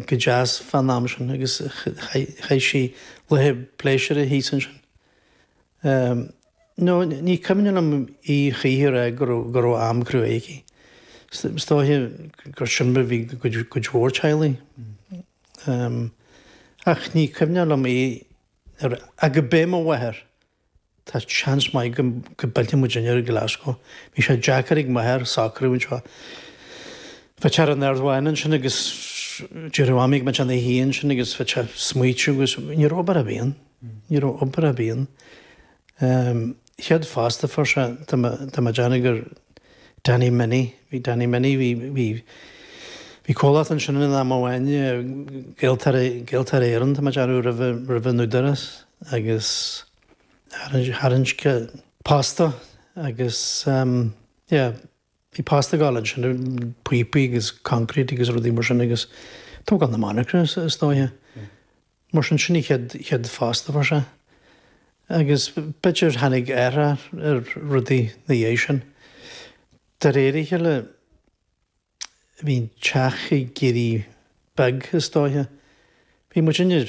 go deas fán am sin agus chaith sí laethe pléisiúrtha thíos ansin. Nó ní cuimhin liom í choíche a rá go raibh am cruaidh aici. Is dóiche gur sin mar a bhí cuid mhór teaghlaigh. Ach ní cuimhin liom í ar, ach gurb é mo mháthair. Tá seans maith go bpillfeadh muid inne ar Glasgow. Bhí sé deacair ag m'athair a socrú anseo. Bhí sé ar an Ard-Mhaine ansin agus deireadh a mhamaí ag muid ana shuí ansin agus bhí sé smaoitiú agus ní raibh obair ar bith ann. Ní raibh obair ar bith ann. Chéad phosta fuair sé do mo Danny gur Danny Minnie. Bhí Danny Minnie, bhí bhí comhlacht ansin in am amháin, Gaeltarra Éireann, tá mé ag rá roimh an údarás. agus tharraingt posta agus yeah bhí posta ag dul ansin, píopaí agus concrete agus rudaí mar sin agus tógáil na monarchana is dóigh. Mar sin sin an chéad phosta a fuair sé agus b'fhéidir tháinig athrú ar rudaí ina dhiaidh sin. De réir a chéile. Bhí an teach ag éirí beag is dóiche. Bhí muid inne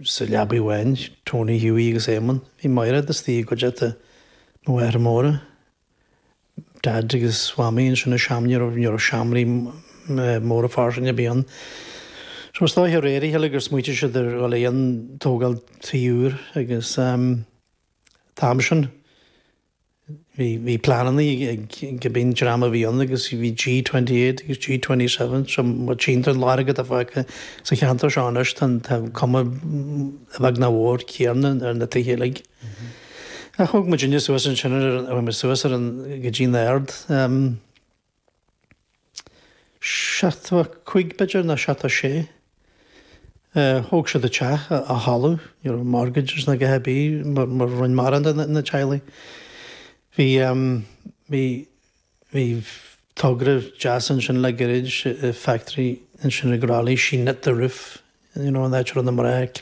sa leabaidh amháin, Tony, Hughie agus Éamonn. Bhí Mairéad istigh i gcuideachta mo mháthair móire. Dad agus Mhamaí ansin i seomra, ní raibh, ní raibh seomraí móra fairsing a' bith ann. So is dóiche de réir a chéile gur smaoitigh siad ar dhul chun tógáil tí úir agus ehm, an t-am sin, Bhí pleananna ag cibé dream a bhí ann agus bhí G28 agus G27 so má tchíonn tú an láthair atá fágtha sa cheantar seo anois tá cuma i bhfad nach mhór céann ar na tithe uilig. Thóg muid inne suas ansin, chuaigh muid suas go dtí'n Aird. Seachtó a cúig b'fhéidir nó seachtó a sé. Thóg siad a teach, a thalamh, ní raibh mortgages ná dhath ar bith mar mar roinn mara de na teaghlaigh. Bhí ehm, bhí, bhí togra deas ansin le gairid, factory ansin ag Raleigh, she knit the roof. you know, an áit a raibh na mná ag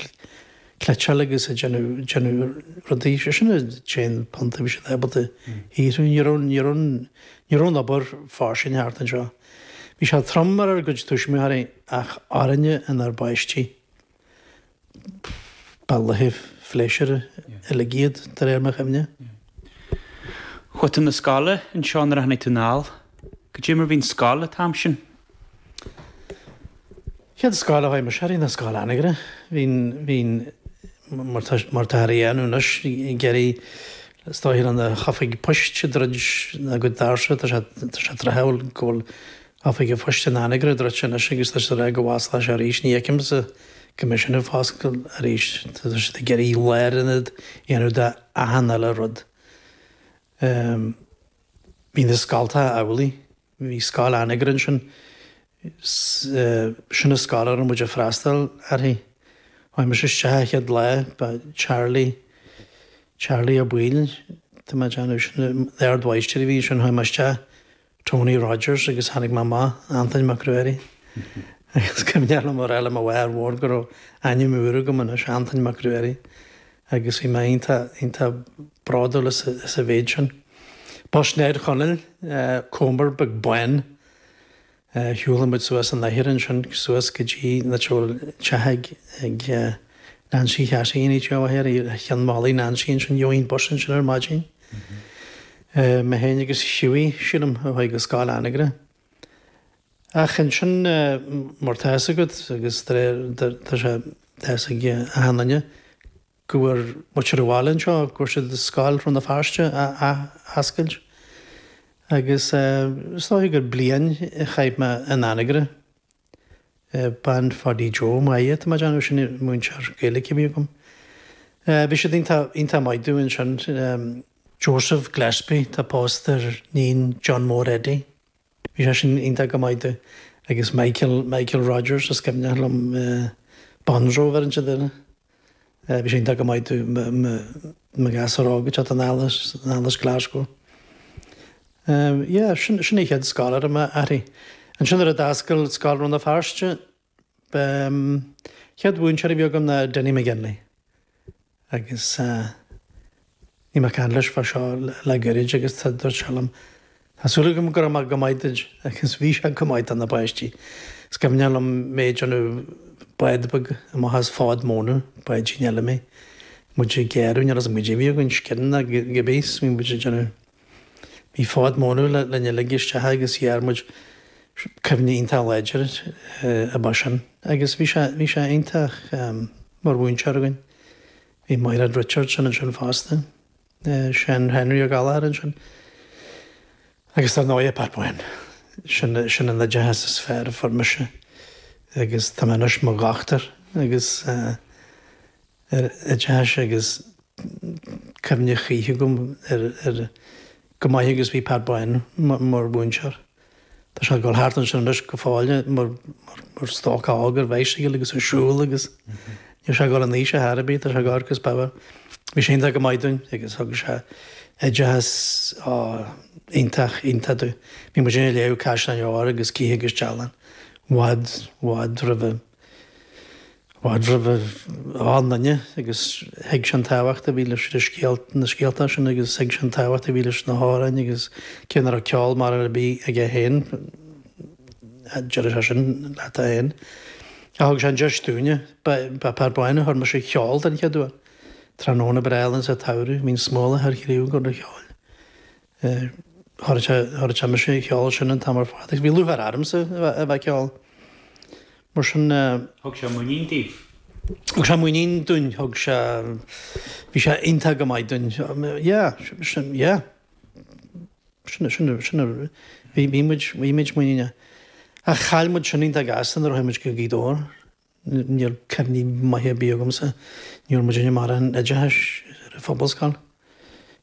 cniotáil agus ag déanamh, déanamh rudaí, sé sin an t-aon phunt a bhí siad ábalta a shaothrú. Ní raibh, ní raibh, ní raibh an obair fairsing thart anseo. Bhí sé trom ar ár gcuid tuismitheoirí ach orainne, inár bpáistí, pff, ba laetha pléisiúrtha uilig iad de réir mo chuimhne. Chuaigh tú 'na scoile anseo nuair a tháinig tú anall. Goidé mar bhí an scoil an t-am sin? Chéad scoil a chuaigh mise uirthi ná scoil Anagaire. Bhí, bhí, mar atáthar a dhéanamh anois, ag iarraidh is dóigh liom na hoifigí poist a dhruid agus tá sé, tá sé tráthúil go bhfuil oifig an phoist in in Anagaire druidte anois agus tá siad ag rá go bhfosclóidh sé arís. Ní fheicimse go mbeidh sin ag foscailt arís. Tá siad ag iarraidh lárionad a dhéanamh de achan uile rud. Bhí na scoltacha amhlaidh. Bhí scoil Anagaire ansin. 'S sin a scoil a raibh muid a' freastail uirthi. Chuaigh mise isteach a' chéad lá, ba Charlie, Charlie Ó Baoill, tá mé ag déanamh, sin a, an Ard Mháighistir a bhí ansin, chuaigh mé isteach, Tony Rogers agus tháinig mé amach, Antain Mac Ruairí. Agus cuimhneach liom a rá le mo mháthair mhór go raibh ainm úr agam anois, Antain Mac Ruairí. agus bhí mé iontach, iontach bródúil as, as a mhéid sin. Bus Ne'd Chonaill, Commer beag bán, shiúl muid suas an láthair ansin, suas go dtí na teach ag, ag Nancy Chassie an áit atá amach ar Chionn Mhalaidh Nancy ansin, gheobhainn an bus ansin ar maidin. Mé féin agus Hughie, sílim, a chuaigh go Scoil Anagaire. Ach ansin mar tá fhios agat, agus tá sé, tá a fhios ag achan duine go bhfuair muintir an bhaile anseo, go bhfuair siad scoil Rann na Feirste a ath-oscailt. Agus is dóiche gur bliain a chaith mé in Anagaire, Bean Pháidí Joe McGee, tá mé ag déanamh, sin múinteoir Gaeilge a bhí agam. Bhí siad iontach maith domh ansin. Joseph Gillespie tá pósta ar níon John Mór Eddie. Bhí sé sin iontach go maith domh agus Michael Michael Rogers is cuimhneach liom Bonzo a bheith ansin do bhí sé iontach go maith domh mo ghasúr óg ag teacht anall as Glasgow yeah sin sin a chéad scoil a raibh mé uirthi ansin nuair a d'oscail scoil Rann na Feirste B'é an chéad mhúinteoir a bhí agam ná Dinny McGinley agus bhí mé ag caint leis fá seo le goirid agus dúirt sé liom Tá súil agam go raibh mé go maith duid agus bhí sé go maith do na páistí. Is cuimhneach liom mé ag déanamh bád beag amach as fód mónadh, báidín eile mé, muid ag gearradh, níl a fhios agam caidé a bhí againn, scian nó cibé, bhí muid ag déanamh. Bhí fód mónadh linn uilig isteach agus ghearr muid cuimhne iontach láidir ar b'é sin. Agus bhí sé, bhí sé iontach mar mhúinteoir againn. Bhí Maighréad Richardson ansin fosta, Seán Henry O'Gallagher ansin agus dar ndóighe Pat Boyne. Sin, sin an oideachas is fearr a fuair mise agus tá mé anois mo dhochtúir agus eh, oideachais agus cuimhne choíche agam air go maith agus bhí Pat Byrne mar mhúinteoir. Tá sé ag dul thart ansin anois go fóill mar stócach óg ar bicycle agus ar siúl agus níl sé ag dul in aois ar chor ar bith, tá sé ag amharc is beagán. Bhí sé iontach go maith dúinn agus thug sé oideachas iontach, iontach dúinn. Bhí muid ann ag léamh Caisleáin Óir agus Cith agus Dealán i bhfad, i bhfad roimh an. Bhfad roimh achan duine agus thuig sé an tábhacht a bhí leis na scéalta sin agus thuig sé an tábhacht a bhí leis na hamhráin agus cé nach raibh ceol mór ar bith aige féin, deireadh sé sin leat é féin, ach thug sé an deis dúinne. Ba é Pat Byrne a chuir mise a cheol den chéad uair. Tráthnóna breá álainn sa tsamhradh, bíonn smólach ar chraobh ag gabháil cheoil. Chuir sé mise a cheol ansin an t-am ar fad agus bhí lúcháir ormsa a bheith ag ceol. Mar sin. Thug sé muinín daoibh? Thug sé muinín dúinn, thug sé, bhí sé iontach go maith dúinn. Yeah, sin, yeah. Sin, sin, sin a, bhí, bhí muid, bhí muid muiníneach. Ach chaill muid sin iontach gasta nuair a chuaigh muid go Gaoth Dobhair. Níl cuimhní maithe ar bith agamsa níor muid in a mbarra an oideachais ar an Phobalscoil.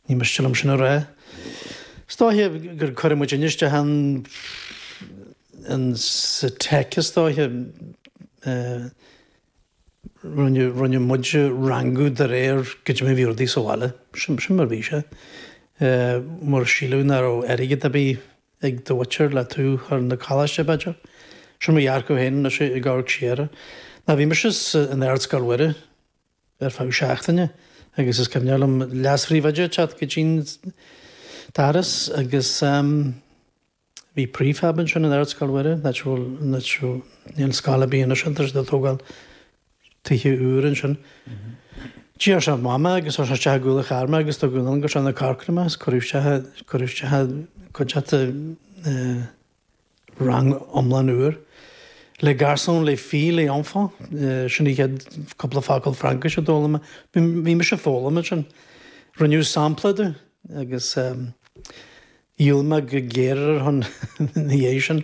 Ní miste liom sin a rá. Is dóiche gur cuireadh muidinne isteach insa teic is dóiche. Rinneadh muid a rangú de réir goidé mar a bhí rudaí sa bhaile. Sin mar a bhí sé. Mar síleadh nach raibh airgead ar bith ag do mhuintir le tú a chur 'na coláiste, b'fhéidir? Sin mo dhearcadh féin anois ag amharc siar. Nó bhí mise in Ardscoil Mhuire ar feadh seachtaine agus is cuimhneach liom leasphríomhoide ag teacht go dtí an doras agus bhí prefab ansin in Ardscoil Mhuire, nach bhfuil, níl scoil ar bith anois ann, tá siad ag tógáil tithe úra ansin. D'iarr sé amach mé agus chuir sé isteach i gcúl an chairr mé agus tugadh anonn go Srath na Corcra mé agus cuireadh isteach, cuireadh isteach i gcuideachta rang iomlán úr. Les garçons, les filles, les enfants, sin a chéad cúpla focal Fraincis a d'fhoghlaim mé. Bhí, bhí mise ag foghlaim ansin. Rinneadh sampla díom agus Dhíol mé go géar ar a shon ina dhiaidh sin.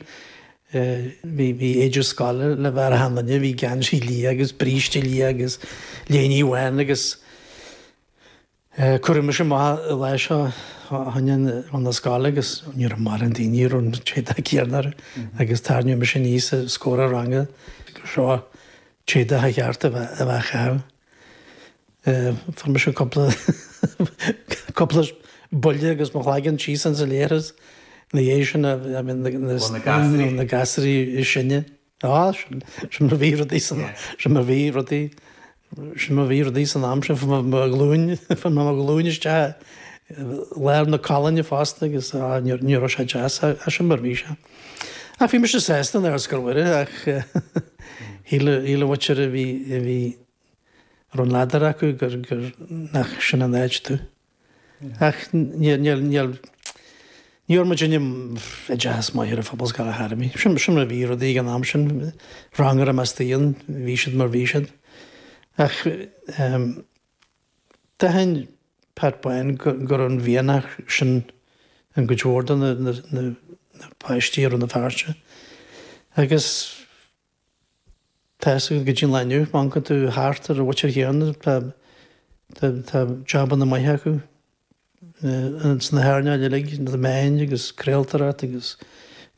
Bhí éide scoile le bheith ar achan duine, bhí geansaí liath agus bríste liath agus léinidh bhán agus cuireadh mise amach an lá seo chun na, chun na scoile agus ní raibh mórán daoine a raibh an t-éadach céanna orthu agus tarraingíodh mise aníos os comhair an ranga gur seo an t-éadach ba cheart a bheith á chaitheamh. Fuair mise cúpla cúpla buille agus mo chloigeann síos ins an leithreas ina dhiaidh sin a I mean na na na gasraí na gasraí is sine. Á sin sin mar a bhí rudaí sin sin mar a bhí rudaí sin mar a bhí rudaí san am sin fuair mé mo ghlúin fuair mé glúin isteach i lár na colainne fosta agus á ní ní raibh sé deas ach sin mar a bhí sé. Ach bhí mise sásta in Ardscoil Mhuire ach shíl an mhuintir a bhí a bhí a raibh an ladar acu gur gur nach sin an áit domh. Ach níor níor níor ní bhfuair muid aon oideachas maith ar an phobalscoil a tharmí. Sin mar a bhí rudaí ag an am sin ranganna measctha ann bhí siad mar a bhí siad. Ach um, D'aithin Pat Bán go raibh an mianach sin i gcuid mhór de na páistí i Rann na Feirste agus tá siad go dtí an lá inniu, má amharcann tú thart ar an mhuintir chéanna tá jabanna maithe acu sna hearnáil uilig, na meáin agus craoltóireacht agus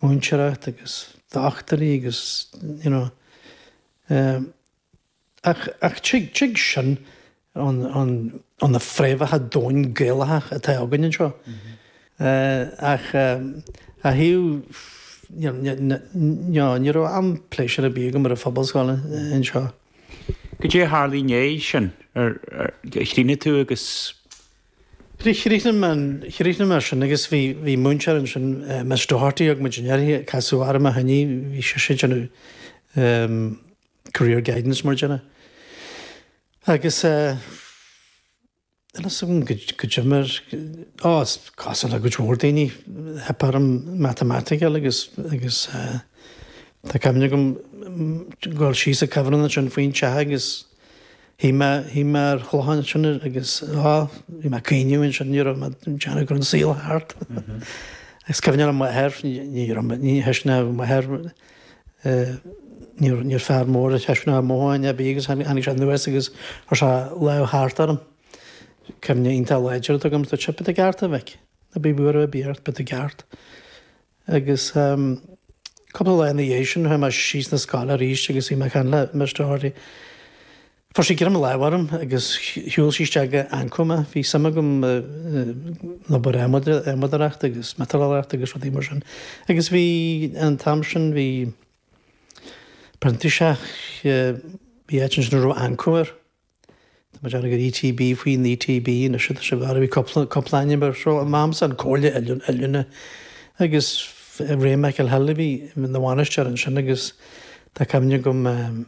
múinteoireacht agus dochtúirí agus you know. Ach tig sin ó na fréamhacha domhain Gaelacha atá againn anseo. Ach a thaobh ná ní raibh am pléisiúrtha ar bith agam ar an phobalscoil anseo. Goidé a tharla ina dhiaidh sin ar chríochnaigh tú agus. Chríochnaigh mé ar sin agus bhí múinteoir ansin Miss Doherty agam a d'fhill uirthi casadh orm a choinne bhí sise ag déanamh career guidance mar dhéanamh. Agus eh a fhios agam go go deimhin ar á cosúil le cuid mhór daoine theip orm matamaitic agus agus eh tá cuimhne agam dul dul síos ag cuibhreann ansin faoin teach agus shuigh mé shuigh mé ar chlochán ansin agus á bhí mé ag caoineadh ansin bhí mé ag déanamh go raibh an saol thart. Agus cuimhne ar m'athair ní raibh ní raibh mé ní thuisne mé m'athair Níor fear mór a thaispeánadh mothúcháin ar bith agus tháinig sé anuas agus chuir sé lámh thart orm. Cuimhne iontach láidir atá agam, dúirt sé, Beidh tú i gceart a mhic, ná bíodh buaireamh ar bith ort, beidh tú i gceart. Agus cúpla lá ina dhiaidh sin chuaigh mé síos na scoile arís agus bhí mé ag caint le Miss Doherty. Chuir sí greim láimhe orm agus shiúil sí isteach go Anco mé. Bhí suim agam in obair adhmadóireachta agus miotalóireachta agus rudaí mar sin agus bhí, an t-am sin, bhí printíseach, bhí áit ansin a raibh Anco air, tá mé ag déanamh gur ETB, faoin ETB anois atá sé, b'fhearr, bhí cúpla, cúpla ainm air. So, an t-am sin, Comhairle Oiliúna agus Ray McElhill a bhí ina bhainisteoir ansin agus tá cuimhne agam,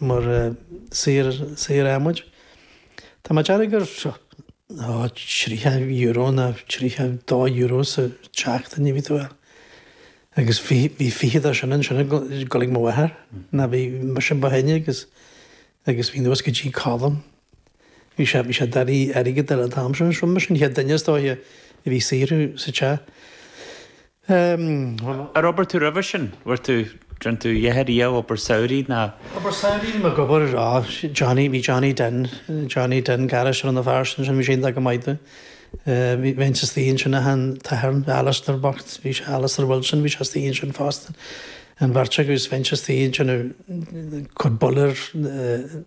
mar saor adhmaid. Tá mé ag déanamh gur €30 ná €32 sa tseachtain a bhí tú ag fáil agus bhí fiche de sin ansin ag dul ag mo mháthair. Ná bhí mise ba shine agus bhí anuas go dtí Colm. Bhí sé, bhí sé ag iarraidh airgead ar an t-am sin agus rinne mise an chéad duine is dóiche a bhí ag saothrú sa teach. Ehm. Ar oibir tú roimhe sin? Bhfuair tú, rinne tú a dhath ariamh obair samhraidh ná? Obair samhraidh bhí mé ag obair, á, Johnny, bhí Johnny Den, Johnny Den Garris ar an fear sin sin bhí sé iontach go maith do. Bhí, bheinnse istigh ansin agus an t-athair, Alastair bocht, bhí sé, Alastair Wilson, bhí sé istigh ansin fosta. An bheirt agaibh is bheinnse istigh ansin ag cur boiler, eh,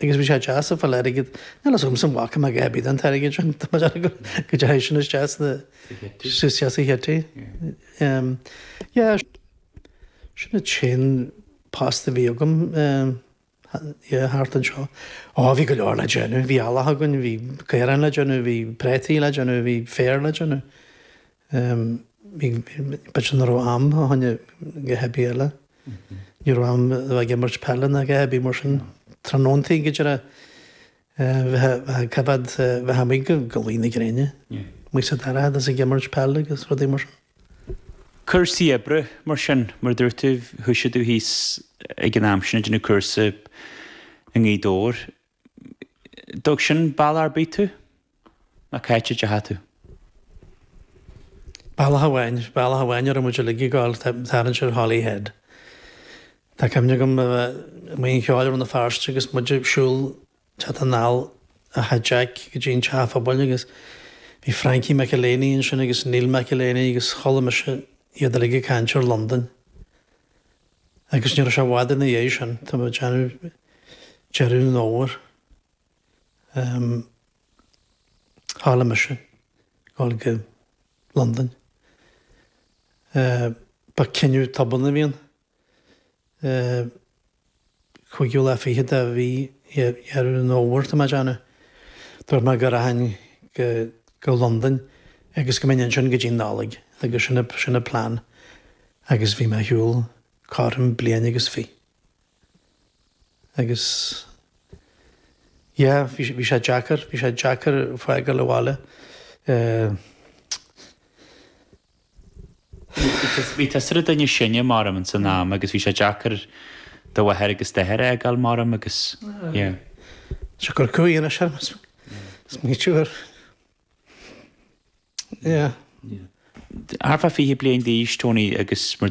Agus bhí sé deas ag fáil airgead. Níl fhios agamsa an bhfaca mé a dhath ar bith den t-airgead sin. Tá mé dearfa go dteachaidh sin isteach sna, isteach sa chití. Yeah, sin an t-aon post a bhí agam, yeah, thart anseo. Á, bhí go leor le déanamh. Bhí eallach againn, bhí caorán le déanamh, bhí prátaí le déanamh, bhí féar le déanamh. B'fhéidir nach raibh am fá choinne a dhath ar bith eile. Ní raibh am a bheith ag imirt peile ná a dhath ar bith mar sin. Tráthnóntaí go dtiocfadh leat bheith amuigh go luí na gréine. Muid sa dorchadas ag imirt peile agus rudaí mar sin. Cúrsaí oibre mar sin. Mar a dúirt tú, thoisigh tú thíos ag an am sin ag déanamh cúrsa i nGaoth Dobhair. Dtug sin bealach ar bith tú ná cá háit a dteachaidh tú. Bealach amháin, bealach amháin a raibh muid uilig ag gabháil ag tarraingt ar Holyhead. Tá cuimhne agam a bheith i mBuíon Cheoil Rann na Feirste agus muid ag siúl teacht anall ó Thigh Jack go dtí an teach an phobail agus bhí Frankie McElhaney ansin agus Neil McElhaney agus chuala mise iad uilig ag caint ar Londain. Agus ní raibh sé i bhfad ina dhéidh sin, tá mé ag déanamh deireadh an Fhómhair, tharla mise dhul go Londain. Ba cinneadh tobann a bhí ann. Cúigiú lá fichead de mhí Dheireadh an Fhómhair tá mé ag déanamh. Dúirt mé go rachainn go Londain agus go mbeinn ansin go dtí'n Nollaig agus sin an plean agus bhí mé ar shiúl cothrom bliain agus fiche. Agus yeah, bhí sé deacair, bhí sé deacair fágáil an bhaile. Bhí tusa ar an duine is sine m'orm ins an am agus bhí sé deacair do mháthair agus d'athair a fhágáil m'orm agus yeah. Seo gur cúig anois orm is ní siúr. Yeah. Thar fá fiche bliain d'aois Tony agus mar